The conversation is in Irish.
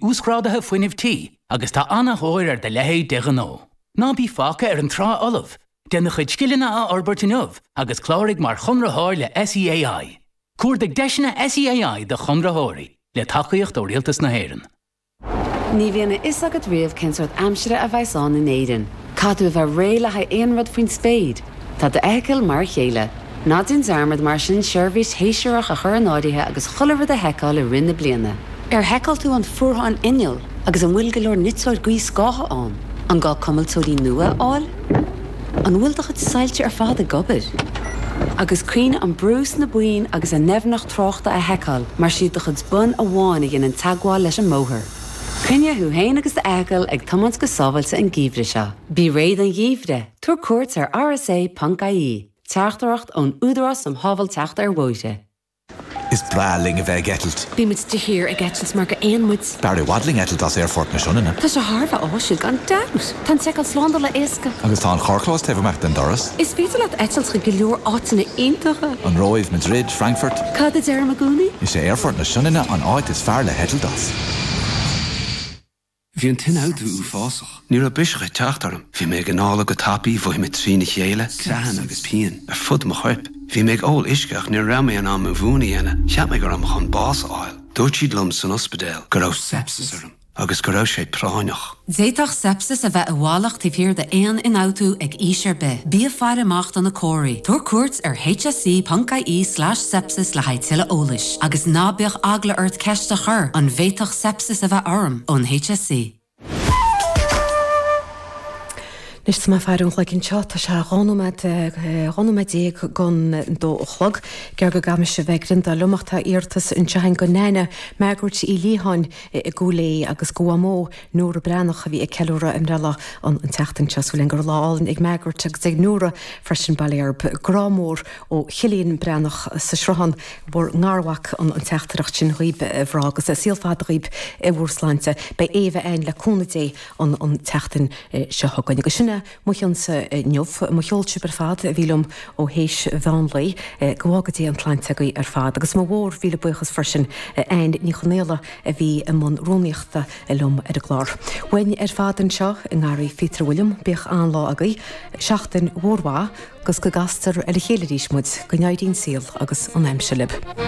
Uasghrádaithe Fuinnimh Tí agus tá ana-thóir ar do leithéidí de ghnó. Ná bí fágtha ar an trá fholamh! Déan do chuid scileanna a fhorbairt inniu agus cláraigh mar Chonraitheoir le SEAI. Cuardaigh deiseanna SEAI do Chonraitheoirí, le tacaíocht ó Rialtas na hÉireann. Ní bhíonn a fhios agat riamh cén sórt aimsire a bheas ann in Éirinn. Caithfidh tú a bheith réidh le haghaidh aon rud faoin spéir! Tá d'fheithicil mar a chéile. Ná déan dearmad mar sin seirbhís shéasúrach a chur in áirithe agus chuile rud a sheiceáil i rith na bliana. Ar sheiceáil tú an fuarthán innill agus an bhfuil go leor niteoir gaothscátha ann? An gá cuimilteoirí nua a fháil? An bhfuil do chuid soilse ar fad ag obair? Agus cuimhnigh an brú sna boinn agus an doimhneacht tráchta a sheiceáil mar is iad do chuid bonn amháin a dhéanann teagmháil leis an mbóthar. Coinnigh thú féin agus d'fheithicil ag tiomáint go sábháilte an geimhreadh seo. Bí réidh don gheimhreadh! Tabhair cuairt ar rsa.ie, Teachtaireacht ón Údarás um Shábháilteacht ar Bhóithre. Is breá linn a bheith ag eitilt. Ní muid de shíor ag eitilt mar gur éin muid. B'fhearr i bhfad linn eitilt as Aerfort na Sionainne. Tá sé thar a bheith áisiúil gan dabht! Tá an tseiceáil slándála éasca. Agus tá an carrchlós taobh amach den doras. Is féidir leat eitilt chuig go leor áiteanna iontacha. An Róimh, Madrid, Frankfurt. Cad a deirim i gcónaí? Is é Aerfort na Sionainne an áit is fearr le heitilt as. Bhí an t-ionfhabhtú uafásach. Ní raibh biseach ag teacht orm. Bhí mé ag anála go tapaidh, mhothaigh mé trína chéile, creathanna agus pian ar fud mo choirp. Bhí mé ag ól uisce ach ní raibh mé in ann mo mhún a dhéanamh. Cheap mé go raibh mé chun bás a fháil. Dúirt siad liom san ospidéal go raibh sepsis orm agus go raibh sé práinneach. D'fhéadfadh sepsis a bheith i bhfalach taobh thiar d'aon ionfhabhtú ag aois ar bith. Bí ag faire amach do na comharthaí. Tabhair cuairt ar hse.ie slash sepsis le haghaidh tuilleadh eolais. Agus ná bíodh eagla ort ceist a chur, an bhféadfadh sepsis a is a bheith orm ón HSE. Anois is maidir leis an gcloig anseo tá sé dhá nóiméad, eh, dhá nóiméad déag don dó a chlog. Gearr go gcaithfimid a bheith grinn dá liom ach tá iarratas anseo a'inn go Neaine, Margaret Uí Liatháin i i gCúil Aodha agus go Mhamó, Nóra Breathnach a bhí ag ceiliúradh a mbreithlá an an tseachtain seo. Súil a'inn go raibh lá álainn ag Margaret agus ag Nóra freisin, bail air. Grá mór. ó Chillian Breathnach sa Sruthán, bhur ngarmhac an teachtaireacht sin dhaoib, a mhná, agus saol fada dhaoib i bhur sláinte. Beidh Aobh a'ainn, le cúnamh Dé, an tseachtain seo chugainn. Agus sin é mo chionnsa inniu. Mo cheol sibh ar fad a bhí liom ó théis mheán lae. Go bhfága Dé an tsláinte agaibh ar fad. Agus mo mhór mhíle buíochas freisin d'Ann Ní Chonaola a bhí i mbun rúnaíochta liom ar an gclár. Uainn ar fad anseo i nGarraí Phíotair Uilliam, bíodh an-lá agaibh. Seachtain mhór mhaith. 'gus go gcastar ar a chéile arís muid, go n-éirí an saol agus an aimsir lib.